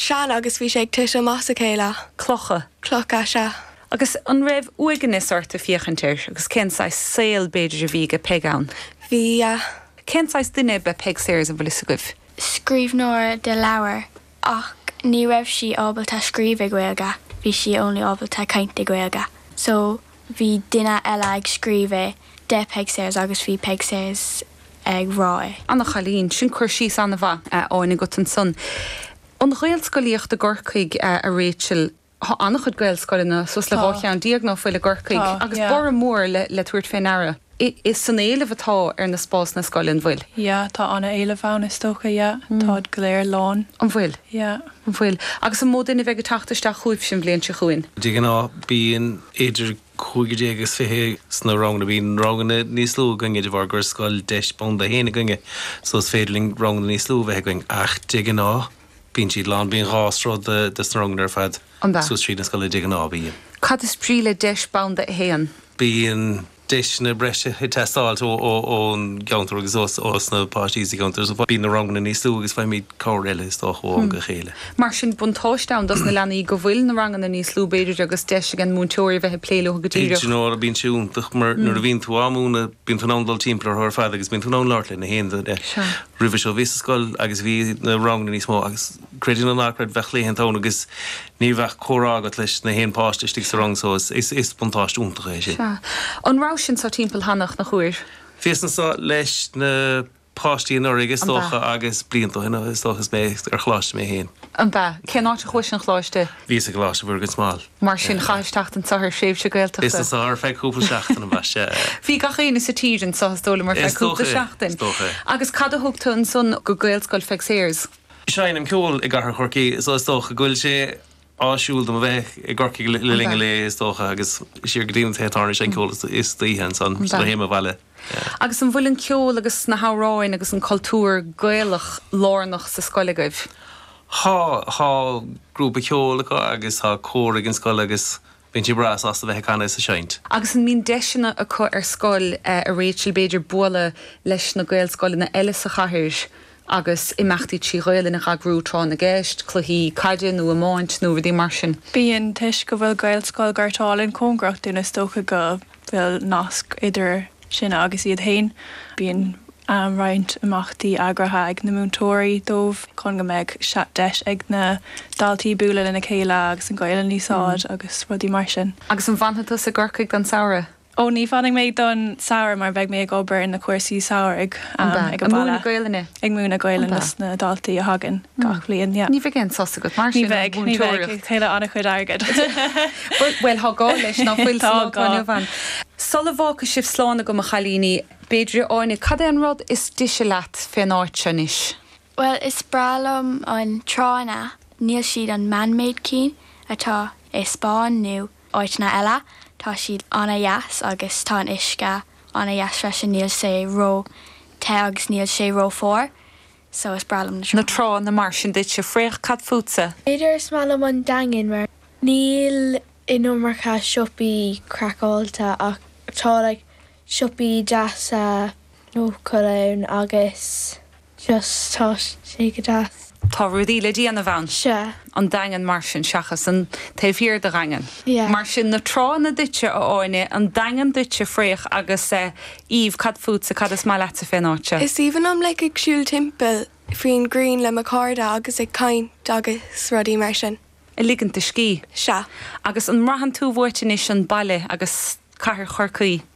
Sean, agus bhí sé ag titim as a chéile. Clocha. Clocha, sea. Agus an raibh uaigneas ort ag féachaint air agus cén saghas saoil b'fhéidir a bhí ag Peig ann? Bhí, yeah. Cén saghas duine ab ea Peig Sayers an bhfuil fhios agaibh? Scríbhneoir de leabhar ach ní raibh sí ábalta scríobh i Gaeilge, bhí sí only ábalta caint i Gaeilge so. Bhí duine eile ag scríobh é de Peig Sayers agus bhí Peig Sayers ag rá é. Ana chailín, sin cur síos ana-mhaith tá an agat ansan. An Ghaelscolaíocht i gCorcaigh, a Rachel. Tá an-chuid Gaelscoileanna suas le dhá cheann déag nó faoi leith i gCorcaigh, agus borradh mór le tabhairt fé ndeara. Is an-éileamh atá ar na spásanna scoile an bhfuil? Yeah, tá ana éileamh ann is dócha, yeah, táid go léir lán. An bhfuil? Yeah. An bhfuil? Agus an mó duine a bheidh ag teacht isteach chugaibhse an bhliain seo chugainn? De ghnáth bíonn idir cúigear déag agus fiche sna ranganna. Bíonn ranganna níos lú againne de bharr gur scoil deis banda a haon againne so is féidir linn ranganna níos lú a bheith againn ach de ghnáth, Bíonn siad lán, bíonn dhá sruth de sna ranganna ar fad suas tríd an scoil de ghnáth, bíonn. Cad is brí le deis banda a haon? Bíonn deiseanna breise ag teastáilt ón gceantar agus ó na páistí sa gceantar so bíonn na ranganna níos lú agus faighimid cabhair eile is dócha ó am go chéile. Mar sin buntáiste ann dos na leanaí go bhfuil na ranganna níos lú b'fhéidir agus deis ag an múinteoir a bheith ag plé leo go díreach. Bíonn sé iontach mar nuair a bhíonn tú á múineadh bíonn tú in ann dul timpeall orthu ar fad agus bíonn tú in ann labhairt le nach aon duine. Roimhe seo bhíos i scoil agus bhí na ranganna níos mó agus, creid é nó ná creid, bheadh laethanta ann agus ní bheadh comhrá agat leis nach aon pháiste istigh sa rang so is buntáiste iontach é sin. An raibh tú anso timpeall cheana, nach bhfuair? Bhíos anso leis na. páistí anuraidh is An bea? dócha agus blianta ó shin is dócha is mé ar choláiste mé féin. An bea? Cén áit a chuais ar choláiste? Bhíos i gColáiste Mhuire gan Smál. Mar sin chaitheas teacht aniar ar thréimhse Gaeltachta. anso ar feadh cúpla seachtain an bea? Sea. Bhí gach éinne sa tír anso is dóigh liom ar feadh Is dócha cúpla é. seachtain. Is dócha é. Agus cad a thug tú ansan go Gaelscoil Pheig Sayers? Seinnim ceol i gcathair Chorcaí so is dócha go bhfuil sé áisiúil dom a bheith i gCorcaigh le An linn bea? an lae is dócha agus siar go dtí an téatáir ag seinm ceol istoíche ansan An bea? sula théim abhaile. Agus an bhfuil an ceol agus na hamhráin agus an cultúr Gaelach lárnach sa scoil agaibh? Tá, tá grúpa ceoil acu agus tá cór ag an scoil agus bíonn siad breá sásta bheith ag canadh is ag seinnt. Agus an mbíonn deiseanna acu ar scoil, a Rachel, b'fhéidir bualadh leis na Gaelscoileanna eile sa chathair? agus imeachtaí trí Ghaelainn a eagrú tráth na gceist, cluichí caide nó iomáint nó rudaí mar sin. Bíonn, toisc go bhfuil Gaelscoil Ghort Álainn cóngarach dúinn is dócha go bhfuil nasc idir sinne agus iad féin, bíonn roinnt imeachtaí eagraithe ag na múinteoirí dóibh chun go mbeadh deis ag na daltaí bualadh lena chéile agus an Ghaelainn a úsáid agus rudaí mar sin. Agus an bhfanfaidh tusa i gCorcaigh don tsamhradh? Ó, ní fanfaidh mé don samhradh mar beidh mé ag obair ar na cúrsaí samhraidh ag baile. Ag múineadh Gaelainne? Ag múineadh Gaelainne dos na daltaí a thagann gach bhliain, yeah. Ní bheidh aon sos agat mar sin ón mhúinteoireacht? Ní bheidh, ní bheidh, ag tuilleamh an-chuid airgid. Bhuel, tá gá leis, ná bhfuil, sa lá atá inniu ann. Sula bhfágfaidh sibh slán agam, a chailíní, b'fhéidir, Áine, cad é an rud is dise leat fén áit seo anois? Bhuel is breá liom na tránna, níl siad an man-made cinn atá i Spain nó áiteanna eile, tá siad an-dheas agus tá an uisce an-dheas freisin, níl sé ró te agus níl sé ró fuar, so is breá liom na tránna. Na tránna mar sin duitse Fraoch, cad fútsa? B'fhéidir is maith liom an Daingean mar níl an iomarca siopaí craiceáilte ach tá like siopaí deasa nó cool ann agus just tá sé go deas. Tá rudaí le déanamh ann. Sea. An Daingean mar sin seachas an taobh thiar den Daingean. Yeah. Mar sin na tránna duitse a Áine, an Daingean duitse Fraoch agus eh Eve cad fútsa, cad is maith leatsa fén áit seo? Is aoibhinn liom like ag siúl timpeall faoin ghrian le mo chairde agus ag caint agus rudaí mar sin. Ag ligint do scíth. Sea. Agus an mbraitheann tú uait anois an baile agus cathair Chorcaí?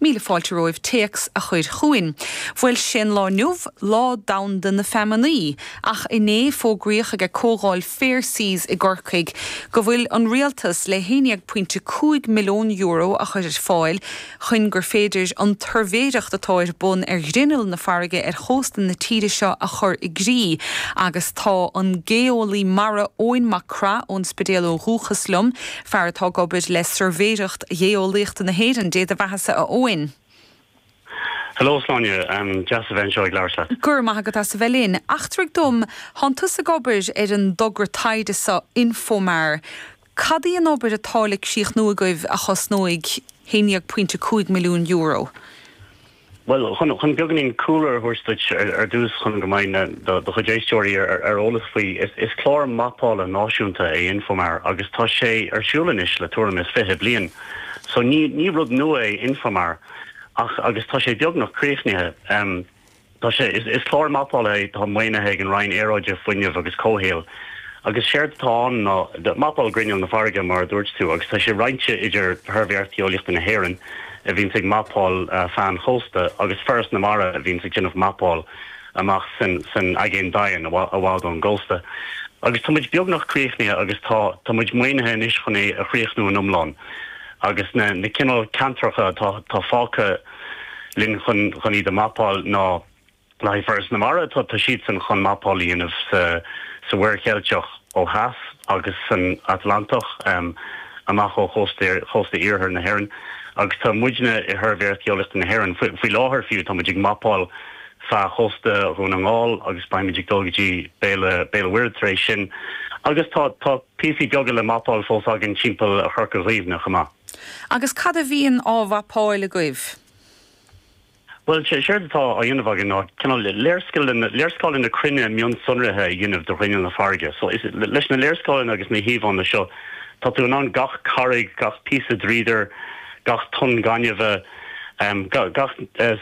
Míle fáilte romhaibh téacs a chur chugainn. Bhuel, sé'n lá inniu, Lá Domhanda na Feamanaí, ach inné fógraíodh ag ag Comhdháil Fair Seas i gCorcaigh go bhfuil an Rialtas le haon dhéag pointe cúig milliún euro a chur ar fáil chuin gur féidir an tsuirbhéireacht atá ar bun ar ghrinneall na farraige ar chósta na tíre seo a chur i gcrích agus tá an geolaí mara Eoin Mac Craith ón Spidéal ó dhúchas liom Fear atá ag obair le Suirbhéireacht Gheolaíochta na hÉireann, dé do bheathasa a Eoin. Hello a Shláine, deas a bheith anseo ag labhairt leat. Go raibh maith agat as a bheith linn. Eachtraigh dom, thánn tusa ag obair ar an dtogra taighde seo Infomar. Cad í an obair atá le críochnú agaibh a chosnóidh 11.5 milliún euro? Bhuel, chun beagáinín cúlra a thabhairt duit ar dtús chun go mbeidh do chuid éisteoirí ar eolas faoi, is clár mapála náisiúnta é Infomar agus tá sé ar siúl anois le tuairim is fiche bliain. So ní rud nua é Infomar ach, agus tá sé beagnach críochnaithe, tá sé, is clár mapála é atá maoinithe ag an Roinn Aeráide, Fuinnimh agus Comhshaoil agus séard atá ann ná mapáil ghrinneall na farraige mar a dúirt tú agus tá sé roinnte idir Shuirbhéireacht Gheolaíochta na hÉireann, a bhíonns ag mapáil feadh an chósta agus Foras na Mara a bhíonns ag déanamh mapáil amach san aigéan doimhin i bhfad ón gcósta. Agus tá muid beagnach críochnaithe agus tá tá muid maoinithe anois chun é a chríochnú in iomlán agus na na cineál ceantracha atá atá fágtha linn chun chun iad a mapáil ná, Le haghaidh Foras na Mara, tá siadsan chun mapáil a dhéanamh sa Mhuir Cheilteach ó theas agus san Atlantach amach ó chósta iarthar na hÉireann agus tá muidne i Shuirbhéireacht Gheolaíochta na hÉireann, faoi láthair fiú, táimid ag mapáil feadh chósta Dhún na nGall agus beimid ag dul go dtí Béal an Mhuirthead tar éis sin agus tá píosaí beaga le mapáil fós againn timpeall Chorca Dhuibhne chomh maith. Agus cad a bhíonn á mhapáil agaibh? Bhuel, séard atá á dhéanamh againn ná cineál léarscáileanna, léarscáileanna cruinne mionsonraithe a dhéanamh de ghrinneall na farraige. So, is leis na léarscáileanna agus na híomhánna seo, tá tú in ann gach carraig, gach píosa dríodair, gach tonn gainimhe, ga, gach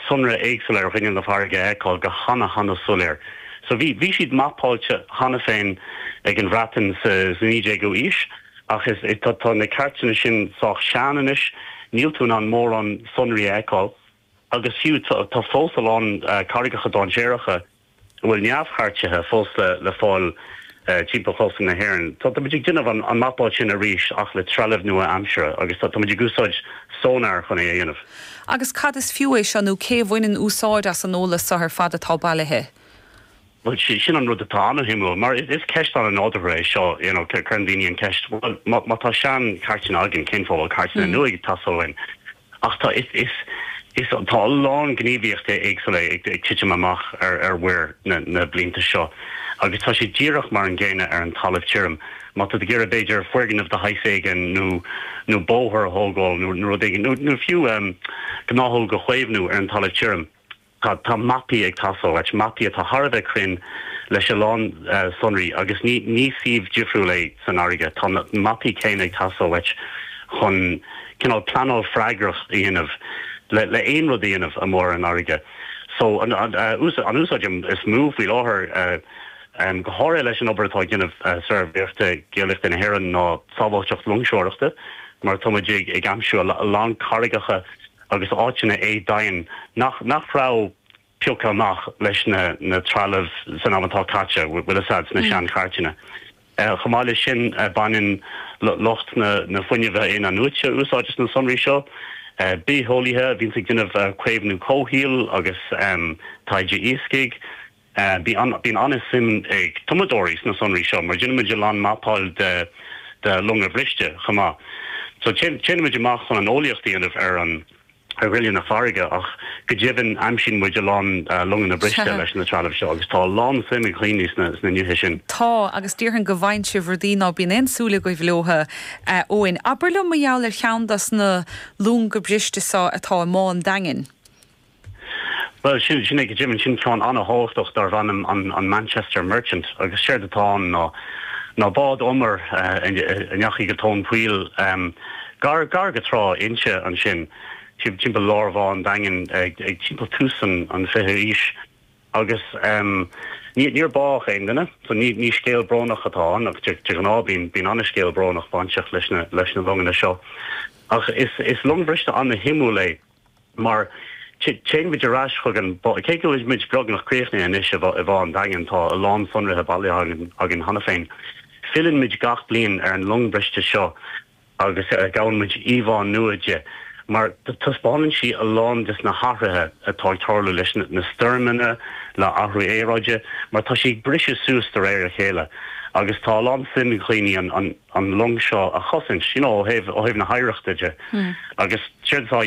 sonra éagsúla ar ghrinneall na farraige a fheiceáil go hana, hana soiléir. So, bhí, bhí siad mapáilte cheana féin ag an Bhreatain sa, sa 19ú aois, ach is, tá, tá na cairteanna sin sách sean anois, níl tú in ann mórán sonraí a fheiceáil. agus fiú tá fós a lán carraigeacha dainséaracha a bhfuil neamhchairtithe fós le fáil timpeall chósta na hÉireann. Táimid ag déanamh an mapáil sin arís ach le trealamh nua-aimseartha agus táimid ag úsáid sonar chun é a dhéanamh. Agus cad is fiú é seo nó cé a bhaineann úsáid as an eolas seo ar fad atá bailithe? Bhuel, sin an rud atá an-shuimiúil, mar is ceist an-nádúrtha é seo, you know, cuireann daoine an cheist, bhuel, má tá seanchairteanna againn, cén fáth a bhfuil cairteanna nua ag teastáil uainn? Ach tá, is, tá a lán gníomhaíochtaí éagsúla ag titim amach ar mhuir na blianta seo agus tá sé díreach mar an gcéanna ar an talamh tirim. Má tá tú ag iarraidh, b'fhéidir, foirgneamh de shaghas éigin nó, nó bóthar a thógáil nó rud éigin, nó, nó fiú gnáthóg a chaomhnú ar an talamh tirim, Tá mapaí ag teastáil uait, mapaí atá thar a bheith cruinn leis a lán sonraí agus ní ní suíomh difriúil é san fharraige. Tá na mapaí céanna ag teastáil uait chun cineál pleanáil freagrach a dhéanamh le le aon rud a dhéanamh amuigh ar an fharraige. So an an úsáid an úsáid is mó faoi láthair eh go háirithe leis an obair atá ag déanamh suirbhéireachta Geolaíochta na hÉireann ná sábháilteacht loingseoireachta mar tá muid ag ag aimsiú a lán carraigeacha agus áiteanna éadomhain nach raibh pioctha amach leis na trealamh san am atá caite, bhfuil fhios a'd, sna seanchairteanna. Chomh maith leis sin baineann lucht na fuinnimh in-athnuaite úsáid as na sonraí seo. Bitheolaithe a bhíonns ag déanamh caomhnú comhshaoil agus taighde iascaigh. Bíonn an-suim ag tumadóirí sna sonraí seo mar déanaimid a lán mapáil de longa briste chomh maith. So téann muid amach chun an eolaíocht a dhéanamh ar ghrinneall na farraige ach go deimhin aimsíonn muid a lán longanna briste leis na trealamh seo agus tá a lán suim ag daoine sna nithe sin. Tá, agus déarfainn go bhfaigheann sibh rudaí ná bíonn aon súil agaibh leotha. Eoin, abair liom mar gheall ar cheann dos na longa briste seo atá i mBá an Daingin. Bhuel, sin, sin é go deimhin, sin ceann an-thábhachtach darb ainm an, an Manchester Merchant agus séard atá ann ná, ná bád umair a ndeachaigh go tóin poill, um, gar, gar go trá Inse ansin timpeall lár Bhá an Daingin ag, ag timpeall tús an, an fichiú aois agus níor, níor bádh aon duine so ní, ní scéal brónach atá ann ach de, de ghnáth bíonn, bíonn an-scéal brónach bainteach leis na, leis na longanna seo ach is, is long briste an-shuimiúil é. mar téann muid ar ais chuige, cé go bhfuil muid beagnach críochnaithe anois i mBá an Daingin, tá a lán sonraithe bailithe againn cheana féin. Filleann muid gach bliain ar an long briste seo agus gabhann muid íomhánna di, mar taispeánann sí a lán des na hathruithe atá ag tarlú leis na stoirmeanna, le athrú aeráide, mar tá sí ag briseadh suas de réir a chéile agus tá a lán suim ag dhaoine an long seo a chosaint, you know, ó thaobh na hoidhreachta de. Agus séard atá.